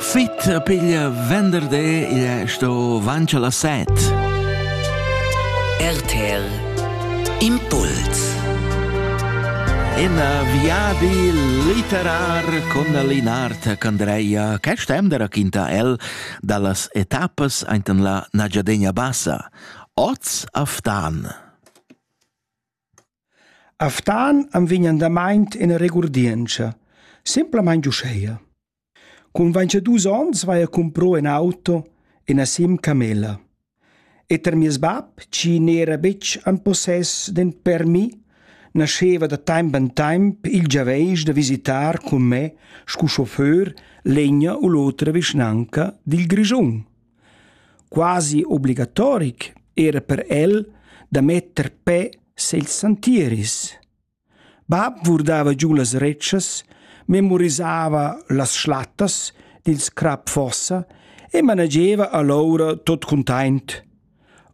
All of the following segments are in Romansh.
Fit piglia venderdi, igl è sto vancio las set. RTL Impuls In viadi litterar con Linard Candreia che stem da raquinta el dallas etappas ainten la Nagiadegna Bassa, Oz a Ftan. A Ftan am vegn andamaint üna regurdientscha, simplamaing uscheja: Cun vainchadüs ons vaja cumprò ün auto e na sim camella. E tar mieus bap, chi n'era betg in possess d'ün permis, nascheva da taimp in taimp il giaveisch da visitar cun me scu chauffeur l'egna u l'otra vischnanca dil Grischun. Quasi obligatoric era per el da metter pe segls santieris. Bab vurdava giu las retschas, memorisava las schlattas dils crap fossa e manageva allora tot cuntaint.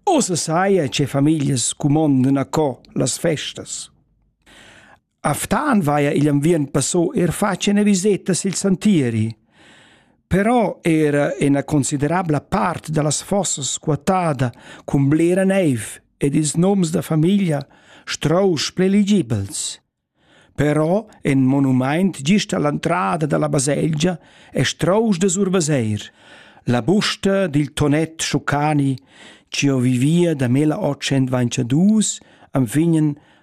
Ossa saia che famiglias cumondan a co las festas. A Ftan vaia igl enviern passò eir fatg ena viseta sil santieri. Però era ena considerabla part dallas fossas squatada cun blera neiv ed ils noms da famiglia strausch preligibels. Però en monumaint gist all'entrada dalla baselgia è strausch da survaseir. La busta dil tonet Schucani, ci o vivia da mela 802, am fingen